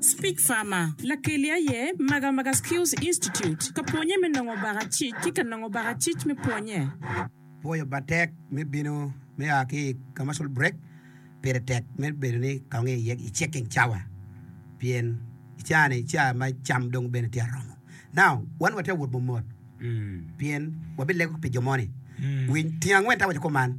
Speak Farmer, Lakeli aye Maga Maga Skills Institute ka pwonye me nongo baka cic ki ka nongo baka cic me pwonye. Pwoyo bad tek me bino me a ki i commercial break pire tek me bedo ni kawongo iye i checking cawa pien i cawa ni ca ma cam dong bene tye aromo now wan watye awot mot mot pien wabilego pi jo moni winy tyen angwen tawaco kuman.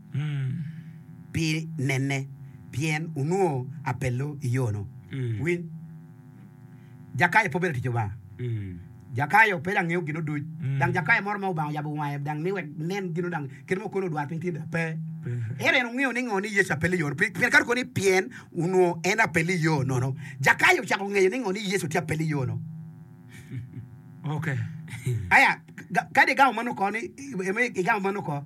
pi nene, pien onongo apello i yo-nu. Winy, Jakayo pe obedo tic Lubanga. Jakayo pe dang ngeyo gino duc. Dang Jakayo moro ma Lubanga oyabo wange dang ni wek nen gino dang kit ma okono odwar piny tyen-ni? Pe. Ento en ongeyo ni ngo ni Yecu apello i yo-nu. Pi pien ka to koni pien onongo en apello i yo nono, Jakayo ocako ngeyo ni ngo ni Yecu tye apello i yo-nu. Aya, kadi i gamo meno ko ni, i gamo meno ko,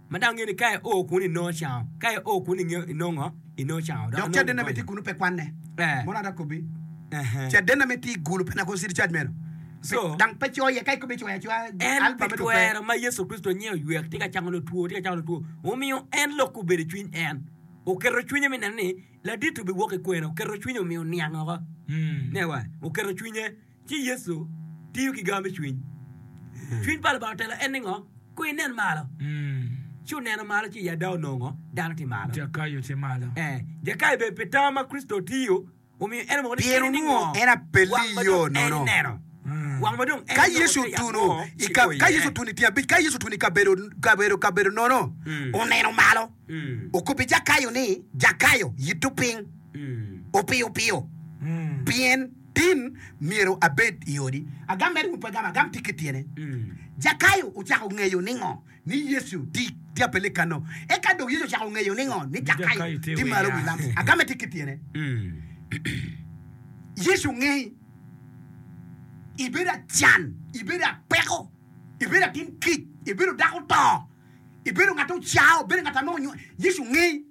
Ma dano ngeyo ni ka io kunu inongo icango, ka io kunu ingeyo inongo inongo cango. Dok cadenna me tic kunu pe kwanne. Mono an akobbi, cadenna me tic kunu pe nakono citi cac meno. Dang pe coyo iye, ka ikobbe icoyo acoya alba me dwogo pe. En pi twero ma Yecu Kricito nyen oywek, tye ka cango lotwo, tye ka cango lotwo, omiyo en lok obedo i cwiny en. Oketo cwinye me neno ni laditi obiwok i kwena, oketo cwinye omiyo oniang oko. Oketo cwinye. Ci Yecu tiyo ki gar me cwiny. Cwiny pa Lubanga otelo en ningo? Kong inen malo. Ci oneno malo ci i ada onongo dano tye malo. Jakayo tye malo. Eh, Jakayo bene pi tam ma Kricito otiyo omiyo en omoko ni Pien kene ningo? onwongo en apelli Wang ma yo dong en nono. ineno. Wang ma dong en Ka inongo Yecu tye yat otuno mo i ka, kikwoyo ka iye. Yecu otuno i tyen abic, ka Yecu otuno i kabedo kabedo kabedo nono, Mm. oneno malo, Mm. okobbi Jakayo ni, Jakayo, yitto piny, Mm. opiyo piyo, Mm. pien Tin, Myero abed i odi. Agam mere wun pe wugamo, agam tic ki tyene. Jakayo ocako ngeyo ningo ni Yecu tye i apele kano? Eka dong Yecu ocako ngeyo ningo ni Jakayo tye malo wi lam? Agamme tic ki tyene. Yecu ngeyi ibedo acan, ibedo apeko, ibedo atin kic, ibedo dako oto, ibedo ngat ocao, ibedo ngat ame onywali. Yecu ngeyi.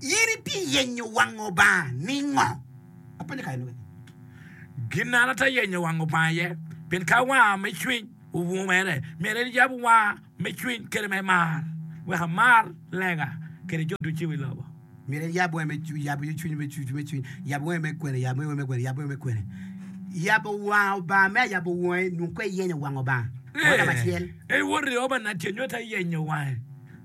In itiyenyo wang Obanga ningo? Apenyo kare nonge. Gin an atye yenyo wang Obanga iye, pien ka wanga me cwiny oungo mere, myero en yab wanga me cwiny kede me mar, wek amar lega kede jo ducu i wi lobo. Myero en yab wange me, yab cwiny me cwiny me cwiny, yab wange me kwene, yab wange me kwene, yab wange me kwene. Yabo wang Obanga me ayabo wangi nungo kwe iyenyo wang Obanga. Wanga macel. Ey woti Obana tye nyo ita yenyo wange.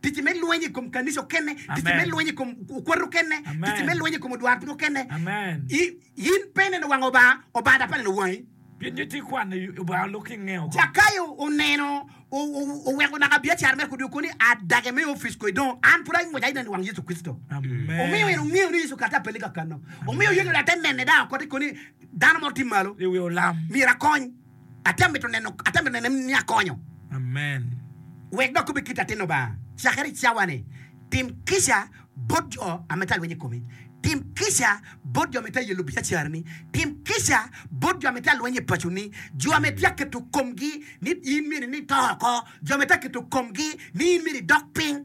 Ticci me lweny i kom kanica okene, ticci me lweny i kom okwat okene, ticci me lweny i kom odwarpiny okene. In pe ineno wang Obanga, Obanga dok pe neno wangi. Pien nyo itye kwano Obanga lok ki nge oko. Zakayo oneno, oweko naka biacara mere kodi, okobo ni, Adage me opic kodi dong, an pud angwec aidong i wang Yecu Kricito. Omiyo en ongeyo ni Yecu kato apelli kakano. Omiyo Yecu dong te nene dang okoto kodi ni, Dano mo tye malo, myero akony. Ate mito neno ate mito neno ni akonyo. Amen. Wek dok kube kit atin Lubanga cakere i cawa-ni, tim kica bot jo a mito alweny i komi. Tim kica bot jo a mito aye lubiacarani. Tim kica bot jo a mito alweny i paconi, jo a mito aketo komgi ni in myero inito oko, jo a mito aketo komgi ni in myero idok piny.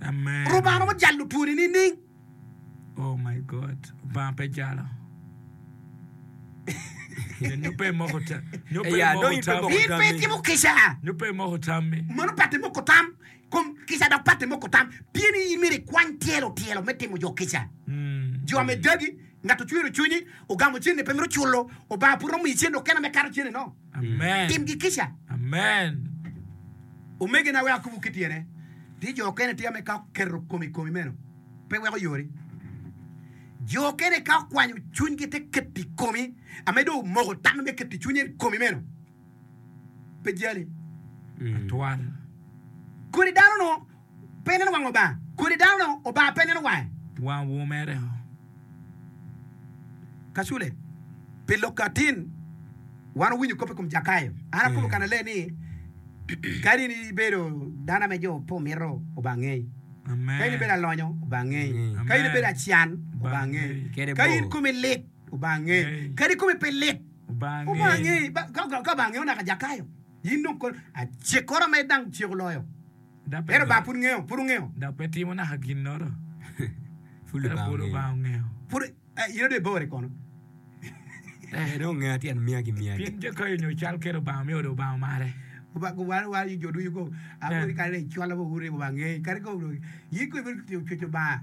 Lubanga ojalo twoni nining? Oh my God, Lubanga pe jala. Nyo pe moko ta, nyo pe Eya, moko ta. In pe itimo kica. Nyo pe moko tammi. Mano pati moko tam, kom kica dok pati moko tam. Pien ni in myero ikwany tyelo tyelo me timo jo kica. Jo me dagi, ngat ocwero cwinyi, ogamo cene pe mito culo, Lubanga pud romo miyi cene okena me kato cene no. Timgi kica. Omegina, wek akobbu kit tyene, tye jo okene tye ame ka oketo kome i komi meno pe weko yori. Jo okene ka okwanyo cwinygi te keto i komi ame dong omoko tam me keto cwinye i komi meno pe jali atwal. Kodi dano-nu Pe neno wang Oba. Kodi dano no Oba pe neno wange. Wang wo mere o. Kacule, pi lok atin, wan owinyo kop i kom Jakayo. An akobo kan alee ni, Kadi in ibedo dano ame jo pe omito, Oba angei. Ka in ibedo alonyo, Oba angei. Ka in ibedo acan, Oba angei. Ka in komi lit, Oba angei. Kadi komi pe lit, Oba angei. Ka Oba angeo naka Jakayo, in dong kodi. Acikora ma idang ceko loyo. Ento Lubanga pud ngeyo, pud ongeyo. Dok pe timo naka ginnoro. Pud Lubanga ongeyo. Pud, eh, in adong ibore kono. Eh, dong ongeya tyen miya ki miya-ni. Pien jo kayo nyo cal kit Lubanga miyo Lubanga mare. Lubanga waro war jo ducu ko. Awobi kare-ni cwalo wa uru ni Lubanga ngeyi. Kadi ko, in kong ibino cweco Lubanga.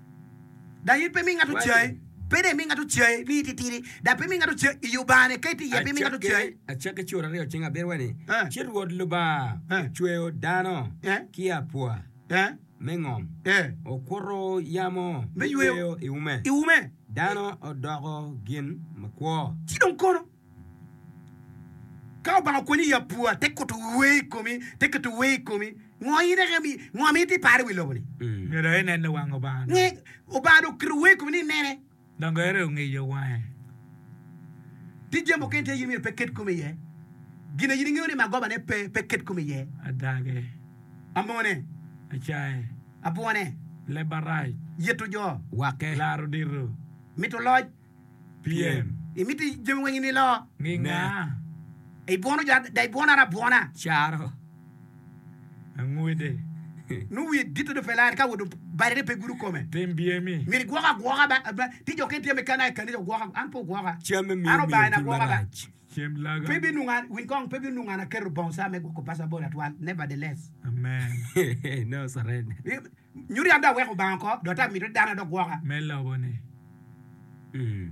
Dok in pe imi ngat ocayi, pe dong imi ngat ocayi ni ititidi, dok pe imi ngat ocayi i Lubangane, ka itye iye, pe imi ngat Acakke, ocayi. acakke cur aryo cing abiro wa ni, Eh. ci Rwot Lubanga Eh. ocweyo dano Eh. ki apwa Eh, me ngom, eh, okuto yamo Me me yweyo. yweyo i ume, i ume. dano odoko gin makwo. Ci dong kono? Ka Lubanga okwenyo i apua, te kuto wer i komi, te keto wer i komi. Ngo in eka mi, ngo ma iti paro i wi lobo ni? Nyo dong inene wang Lubanga Nge, dong. Lubanga dong oketo wer i komi ni inene. Dong gere ongiyo wange. Tye jami mukene tye in myero pe ket komi iye. Gin a in ingeyo ni magobane pe, pe ket komi iye. Adage, Amone, acaye, abwone, leb arac, yeto jo, wake, laro dito, mito loc, Pien. Imito jami weng i nilo. Nginga. Ibwono jo ada, ibwonara abwona. Caro angwede. Nongo wiye gito dong pe lar ka owoto barine pe gudo kome. Tim byemi. Myero igwoko agwoka ba, ba, ti jo kene tye me kana i kanisa ogwoka, an pe ogwoka. Camme myero An Obaina miyo-gi agwoka ba. marac. Cem laga. Pe binongo an, winy kong, pe binongo an aketo bongo ca me gwoko paco abolo atwal, nevertheless. Amen. Nongo surrender. Nyuto yam dong aweko Lubanga oko, dong ata mito ni dano adok gwoka. Me lobone kini.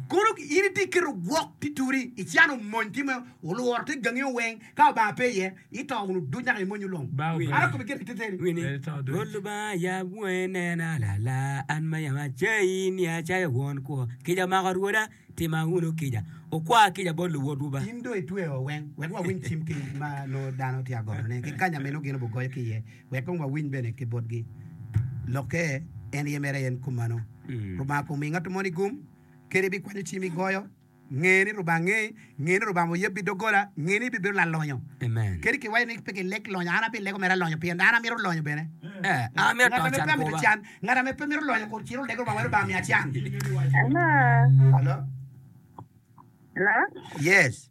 Kono in itye keto gwok tye turi, icano mony tye ma olworo te gangi oweng, ka Lubanga pe iye, ito wunu duc naka imony ulong. Ba Ata obalo. kome gire teteni. Wini, Bedo to duc. Rwot Lubanga yam wonge nena lala, an ma yam acayi ni acaya won kwo. Kica omako rwoda, tima wunu kica, wukwa kica bot luwotwu ba. In dong itweyowa weng, wek wawiny cim ki ma nongo dano tye ka gotone, ki kanya ma inongo gin obugoyo ki iye. Wek kong wawiny bene ki botgi. Lokke en aye mere en kumano. Lubanga kong mi ngatto moni gum, kadi ibikwanyo cim igoyo, nge ni Lubanga ngei, nge ni Lubanga oyebbi doggola, nge ni ibibedo lalonyo. Kadi kiwaco ni pe kileg lonyo, an abilego mere alonyo pien an amito lonyo bene. Ngat ame pe amito can, ngat ame pe mito lonyo kur cit oleg Lubanga wek Lubanga miya can. Hello. Hello. Yes.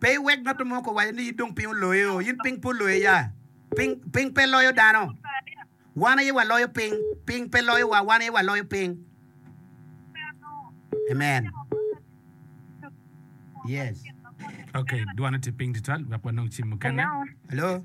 Pe iwek ngat mo ko waco ni in dong piny oloyo. In piny pe oloyo ya. Piny, piny pe loyo dano. Wan aye waloyo piny. Piny pe loyo wa, wan aye waloyo piny. Amen. Yes. Okay, dwane tye piny tutwal wek wanong cim mukene. Hello.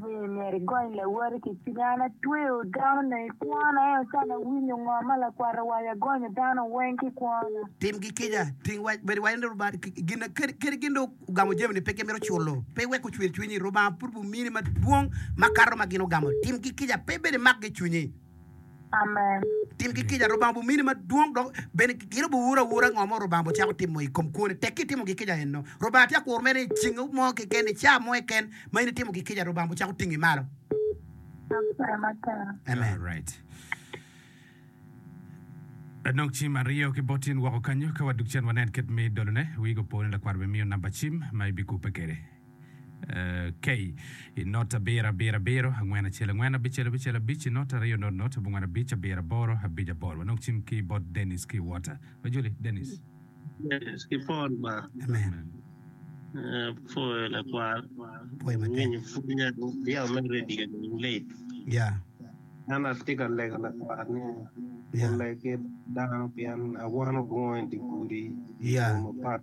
Ni myero igony lawoti ki cwinyi. An atweyo dano ne i kwona, ento can awinyo ngo ma lakwat owaco, agonyo dano weng ki kwona. Tim gi kica, ting wac, bed iwaco ni Rubanga gin, kadi gin dong ogamo jami ni pe gimito culo, pe iwek ocwir cwinyi, Rubanga pud bimini madwong makato ma gin ogamo. Tim gi kica, pe ibed imak gi i cwinyi. Amen. Tim ki kica. Rubanga obimini madwong dok bene gin obiwur awura ngo ma Rubanga obicako timo i kom kwone. Tekki itimo ki kica enno. Rubanga tye akur mere ni i ceng mo keken, i caa mo keken ma in itimo ki kica, Rubanga obicako tingi malo. Apwoyo matek. Amen. Alright. Adong cim aryo ki bot in woko kanyo. Ka wadug cen wanen kit me dolone. Wii go po ni lakwat obimiyo namba cim ma ibikubbe kwede. K. I not abiro abiro abiro, angwen acel angwen, abicel abicel abic, i not aryo not not, abongwen abic, abiro aboro, abic aboro. Wanong cim ki bot Dennis ki Walter. Wa Julie, Dennis. Dennis ki Paul ba. Amen. Apwoyo lakwar. Pwoyo matek. Winyo pwonye yam me radio ni lit. Ya. An atye ka lego lakwar ni oleg ki dano pien awano bunga i dye gudi i yo mapat.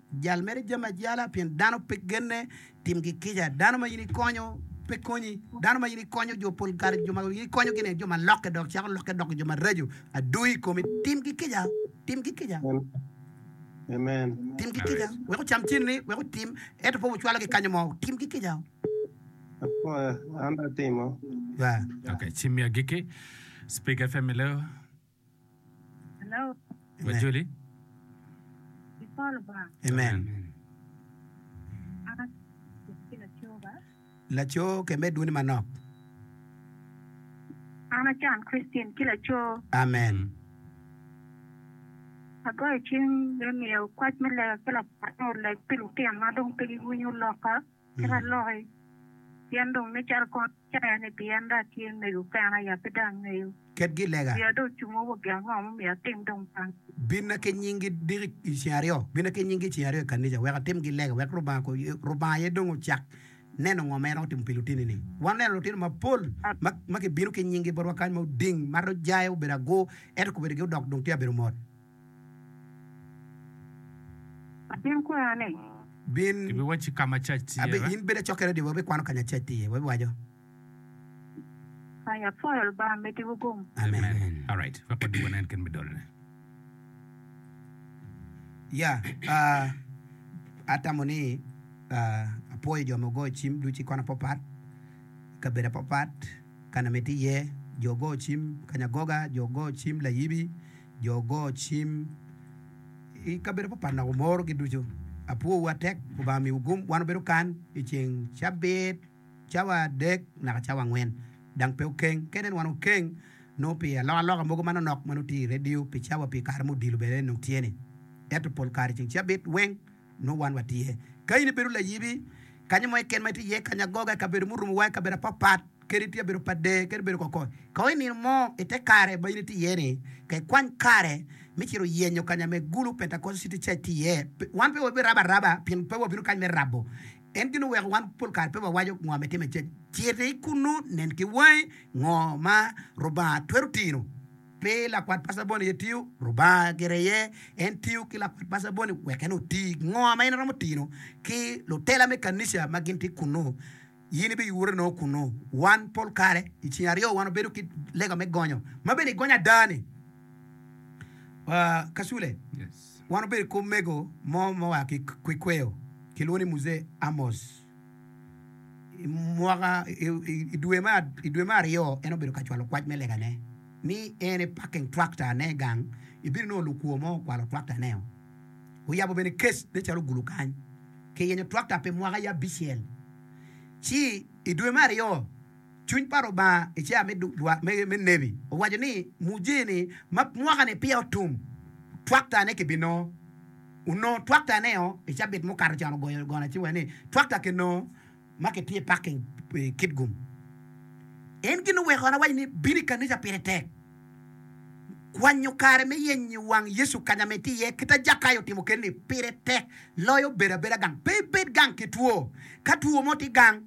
Jal mere jami ajala, pien dano pe genne. Tim gi kica, dano ma in ikonyo pe konyi. Dano ma in ikonyo jo pol kare, jo ma in ikonyogi ni jo ma lokke dok cako lokke doko jo maraco adwogi i komi. Tim gi kica, tim gi kica. Amen. Tim ki kica, wek ocam cen-ni, wek otim, ento pe wucwalo ki kanyo mo. Tim ki kica. Apoya, an atimo. Yeah. Okay, cimmi agikki. Speaker FM Leo. Wajoli. Amen. Laco ke med dwoni manok. An a John Christine ki laco. Amen. Agoyo cing me miyo kwac me lega ki lakwat me oleg pi lutino ma dong pe giwinyo loka. kit aloki, pien dong nen calo kor caya ni pi en dong atye mego kena, ya pe dong angeyo. Ketgi lega. Wiya dong ocungo wa gin ango ma myero atim dong kany. Binna ki nyingi diki i ceng aryo, binna ki nyingi ceng aryo i kanica wek atimgi lega, wek Rubanga ko, Rubanga aye dong ocak neno ngo ma en romo timo pi lutinini. Wan oneno lutino mapol ma, ma kibino ki nyingi botwa kany ma oding, mato jaya, obedo agur, ento kobedogi odok dong tye ka bedo mot. Atin kwena ni. Bin. Kibiwacci ka ma cac tye. Abi, in bed acokke redi, wabikwano ka nya cac tye. Wabiwaco. Kanya pwoyo Lubanga mitiwu gum. Amen. Alright, wek wadog wanen kit me dolone. Ya, ah, atamo ni, ah, apwoyo jo ma ogoyo cim ducu i kona apapat, i kabedo apapat, ka na mitte iye. Jo ogoyo cim, kanya goga, jo ogoyo cim, layibi. Jo go cim I kabedo papat nok omoro gi ducu apwo wu atek kobanga miwu gum wan obedo kan I ceng cabit cawa adek naka cawa angwen dang pe okeng kene wan okeng nongo pi alok aloka mogo manok nok manongo tye I radio pi cawa pi kare ma odilo bene nongo tye ni eto pol kare ceng cabit weng nongo wan watye. Ka in ibedo layibi, kanya mo keken ma itye iye, kanya agoga, i kabedo murumo wa, i kabedo apapat, kadi itye i kabedo pa dee, kadi ibedo kokoi, ka i nino mo i te kare ma in itye iye-ni, ka ikwany kare me cito yenyo kanya ma Egulu Pentecostal City Church tye iye. Wan pe wabirabo araba pien pe wabino kany me rabo. En gin oweko wan pol kare pe wawaco ngo ma itimo i cwiny. Citi kunnu, nen ki wangi ngo ma Lubanga twero tino. Pe lakwat pasabon aye tiyo, Rubanga gire aye en tiyo ki lakwat pasabon-ni wek en oti. Ngo ma in iromo tino ki lutela me kanica ma gin tye kunnu? In ibiyure nongo kunnu. Wan pol kare i ceng aryo wan wabedo ki lega me gonyo, ma bene i gonyo ada-ni, Kasule, wan wabedo ki omego mo ma oa ki Kwikweyo, kilwongo ni Muzee Amos. I mwaka, i dwe me, i dwe me aryo en obedo ka cwalo kwac me legane ni en e parking tractor ne gang i bino nongo lukwo mo okwalo tractor ne o. Oyabo bene kes ne calo gulu kany ki yenyo tractor pi mwaka ye abicel. Ci i dwe me aryo. Cwiny pa Rubanga i cawa me dwar me nebi owaco ni mujini ma mwaka-ni peya otum, twaktane kibinongo. Onongo twaktane-o i cabit mukato con ogoyo gona ci wene ni twakta kinongo ma kitye i parking i Kitgum. En gin oweko an awac ni bino i kanica pire tek. Kwanyo kare me yenyo wang Yecu kanya ma itye iye kit a Jakayo otimo keni-ni pire tek loyo bedo abeda gang. Pe ibed gang ki two. Ka two mo tye gang,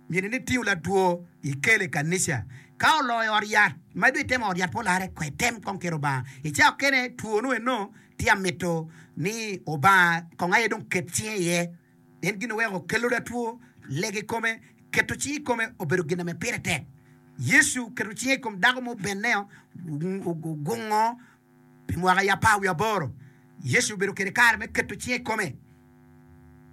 Ngene ni tingo latwo ikele i kanica. Ka oloo i ot yat, ma idong itemo ot yat pe olarre, kwee item kong kel Lubanga. I cawa okene two nu eno tye amito ni Obanga kong aye dong ket cinge iye. En gin oweko kelo latwo lega i kome. Keto cingi i kome obedo gin ame pire tek. Yecu oketo cinge i kom dako mo Beneo, ogungo. Pi mwaka aye apar wiye aboro, Yecu obedo kwede kare me keto cinge i kome.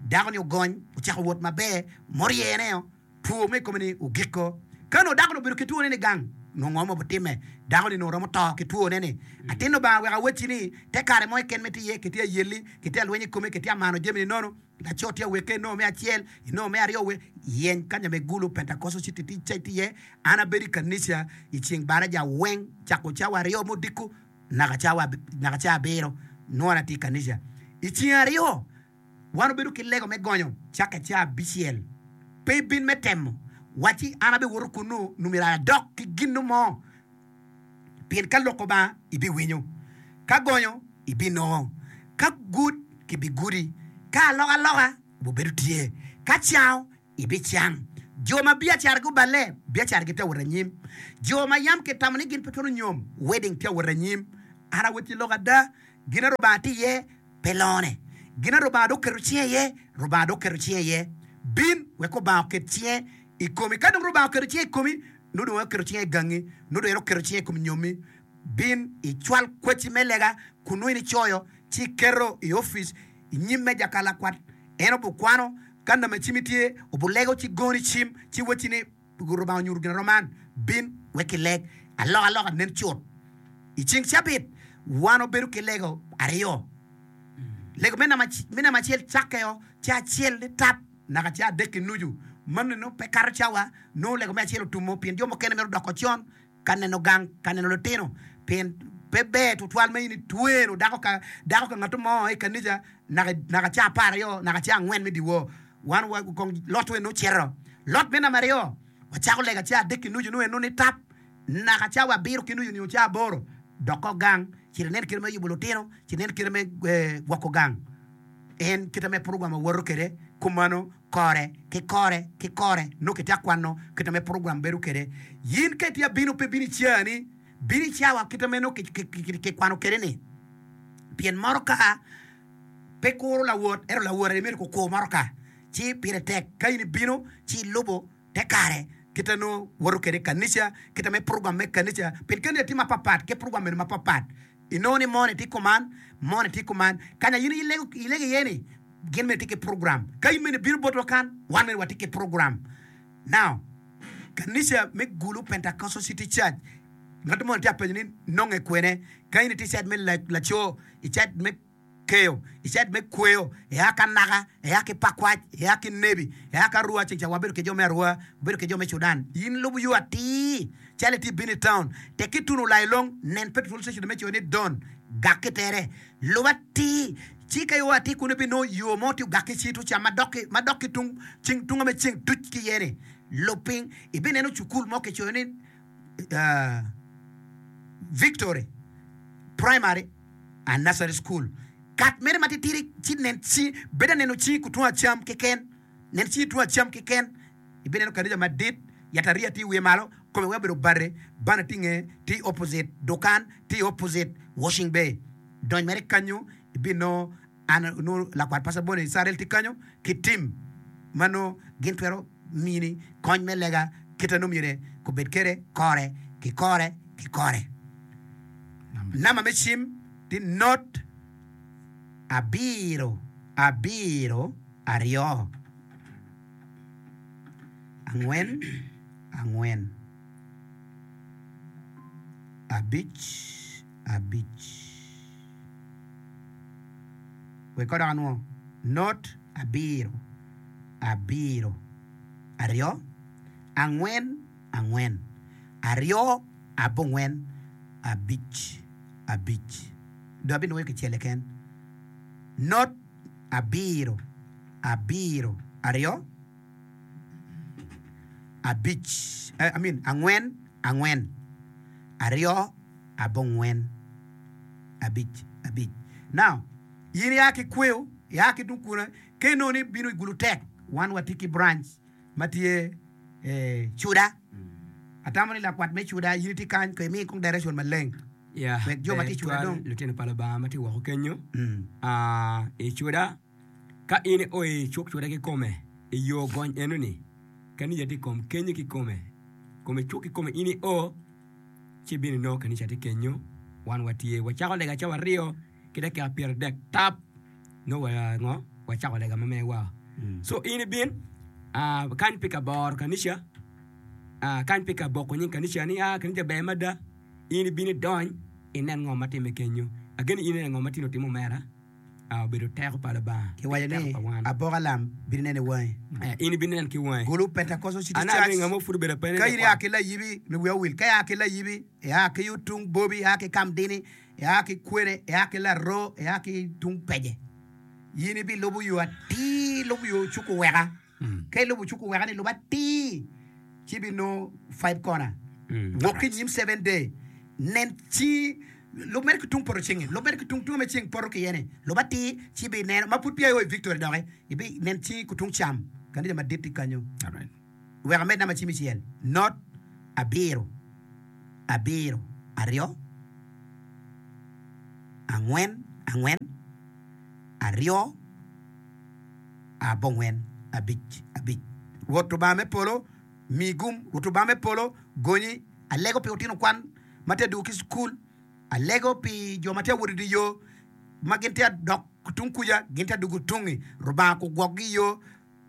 Dako-ni ogony, ocako wot maber, ma oryene o, two mo i kome ni ogiko. Ka onongo dako-ni obedo ki twone nigang, nongo ngo ma obitimme? Dako-ni nongo romo to ki twone-ni. Atin Lubanga wek awacci ni, te kare mo keken ma itye iye, kitye ayelli, kitye alweny i kome, kitye amano jami-ni nono. Laco tye awekke i nongo me acel, i nongo me aryo we yeny kanya me gulu Pentekoco ci kitic ca iti iye. An abedo i kanica i ceng baraja weng cako cawa aryo me odiko naka cawa naka ca abiro nongo an atye i kanica. I ceng aryo wan obedo ki lego me gonyo caka i ca abicel. Pe ibin me temo wacci an abiwoto kunnu nyo myero adok ki ginnu mo. Pien ka loko ba, ibiwinyo, ka gonyo, ibinongo, ka gud, gibigudi, ka alokaloka, wubedo tye, ka cango, ibicang. Jo ma biacara guballe, biacaragi tye awot anyim, jo ma yam kitamo ni gin pe twero nyom, wedding tye awot anyim. An awot ki lok ada, gin a Rubanga tye iye, pe longone, gin a Rubanga dong oketo cinge iye, Rubanga dong oketo cinge iye. Bin wek Rubanga oket cinge i komi. Ka dong Rubanga oketo cinge i komi, nongo dong aketo cinga i gangi, nongo dong en oketo cinge i kom nyommi. Bin icwal kwacci me lega kun nongo in icoyo, ci iketo i opic i nyim meja ka lakwat. En obikwano ka name cimmi tye, obilego ci goni cim, ci wacci ni, Rubanga onyuto ginaroma man, bin wek ileg alokaloka. Nen cut, i ceng cabit wan wabedo ki lego aryo, lego me name acel cakke o, ci acel nitap. naka ca adek ki nucu. Manni nongo pe kato cawa, nongo lego me acel otumo pien jo mukene mito doko con ka neno gang, ka neno litino. Pien pe ber tutwal ma in itwero dako ka dako ka ngat mo i kanica naka naka ca apar aryo naka ca angwen me dyewor. Wan wa kong lot weny nongo cito. Lot me namba aryo, wacako lego ca adek ki nucu nongo en nongo ni tap, naka cawa abiro ki nucu nio ca aboro doko gang, cito inen kite me yubo litino, cito inen kite me gwoko gang. En kite me program awoto kwede kumano kore ki kore ki kore nongo kitye akwano kite me program bedo kwede. In ka itye abino pe bino i caa-ni, bino i caa wa kite me nongo kikwano kwede-ni. Pien moro ka pe kuro lawot ento lawot aye myero kukur moro ka, ci pire tek ka in ibino ci ilubo te kare kite nongo woto kwede i kanica, kite me program me kanica. Pien kanica tye mapat pat ki program bene mapat pat. Inongo ni moni tye kuman, moni tye kuman. Ka nya in ilego iye ni gin mene tye ki program. Ka in mene ibino botwa kan, wan mene watye ki program. Now, kanica me Gulu Pentecostal City Church, ngat moni tye apenyo ni nonge kwene. Ka in itye i cait me laco, i cait me. keyo, i cait me kweyo, ea ka naka, ea ki pakwac, ea ki nebi, ea ka rua ceng ca wabedo ki jo me arua, wabedo ki jo me Sudan. In lubo yo atir, calo itye ibino i taun, tek ki tuno lai long, nen pe twol cecene me coyo ni Don, gak ki tere, lub atir, ci ka ioa atir kunu ibinongo yo mo tye ogak ki cit ocam ma dok ki, ma dok ki tung ceng, tung ame ceng tuc ki iye-ni. Lub piny, ibineno cukul mo kicoyo ni, aa, Victory Primary. A Nursery School, Kat mere matitidi ci nen ci bedo aneno ci ku tung acam keken, nen ci tung acam keken, ibineno kanija madit, yatariya tye i wiye malo, kome weng obedo bate, bana tye i ngeye, tye i opposite dukan, tye i opposite Washing Bay. Dony mere kanyo ibinongo. An onongo lakwat paco abole i Icrael tye kanyo ki tim ma nongo gin twero mini kony me lega kite nongo myero kubed kede kore ki kore ki kore. Namba me cim tye not abiro abiro aryo angwen angwen abic. abic. Wek kor dok anwo not abiro, abiro, aryo, angwen, angwen, aryo, abongwen, abic, abic. Dong abinwoyo kicel keken. Not abiro, abiro, aryo. abic, I mean angwen angwen, aryo abongwen, abic abic. Now, in ya ki kweo, ya ki tung kune, ka inongo ni ibino i Gulutek, wan watye ki branch ma tye Cuda, atamo ni lakwat me Cuda in itye kany, kong imi kong direction maleng wek jo ma tye i Cuda dong. Lutino pa Lubanga ma tye woko kenyo, i Cuda Ka in ioyo i cukcute kikome i yo gony enoni, kanica tye i kom kenyi kikome. Kome cuk kikome in io, ci ibino inongo kanica tye kenyo, wan watye. Wacako lega cawa aryo ki dakika pyeradek tap, nongo wa ngo? Wacako lega ma mewa. Co in ibin, ah, kany pi kaboro kanica, ah, kany pi kaboko nying kanica ni, ah, kanica ber mada. In ibino idony, inen ngo ma timme kenyo. Ageni in ineno ngo ma tye nongo timo mere. obedo teko pa Lubanga. Kiwaco ni, Abok alam bino neni wangi. In ibinen ki wangi. Gulu Pentecostal City Church, Ka in ia ki layibi, mi wiya owil, ka ia ki layibi, ia ki yo tung Bobi, ia ki Kamdini, ia ki Kwene, ia ki Laroo, ia ki tung Peje, in ibilubo yo atir, lub yo cuku weka. Ka ilubo cuku weka ni luba atir ci ibinongo five kona. Wok ki inyim seven day nen ci lub mere ki tung poto ceng-nge, lub mere ki tung tunge ma ceng poto ki iye-ni, luba atir ci ibineno ma pud peya io i victory doki, ibinen cingi ku tung cam, kanisa madit tye kanyo. Wek amed namba cim icel, not abiro abiro aryo angwen angwen aryo. abongwen abic abic. Rwot Lubanga me polo, mi gum. Rwot Lubanga me polo, gonyi. Alego pi otino kwan ma tye adwogo ki cukul. Alego pi jo ma tye awot i dye yo, ma gin tye adok tung kuca, gin tye adwogo tungi. Rubanga kugwokgi i yo,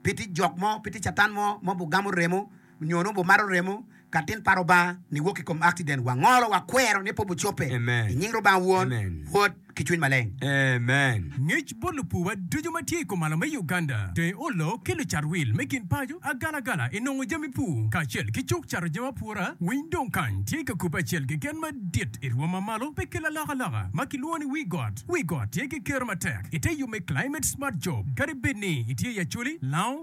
pe tye jok mo, pe tye catan mo ma obigamo remo. nyo nongo bumato remo ka tin pa Rubanga ni wok i kom akciden, wangolo, wakwero ni pe bucobbe. I nying Rubanga Won, Wod, ki Cwiny Maleng. Amen. Ngec bot lupuwa ducu ma tye i kumalo me Uganda, deng olo ki lucat wil me kin paco, agalagala i nongo jami pur kacel ki cuk cato jami apura, winy dong kany tye ka kubbe acel keken madit i rwom ma malo pe kel alokaloka ma kilwongo ni Wi Got. Wi Got tye ki kero matek i te yub me climate smart job kadi bed ni itye i Acholi, Lango,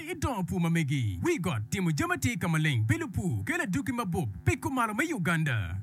I dongo pur ma megi, wi got, timo jami atir ka maleng, bilo pur, kelo adwogi mabup pi kumalo me Uganda.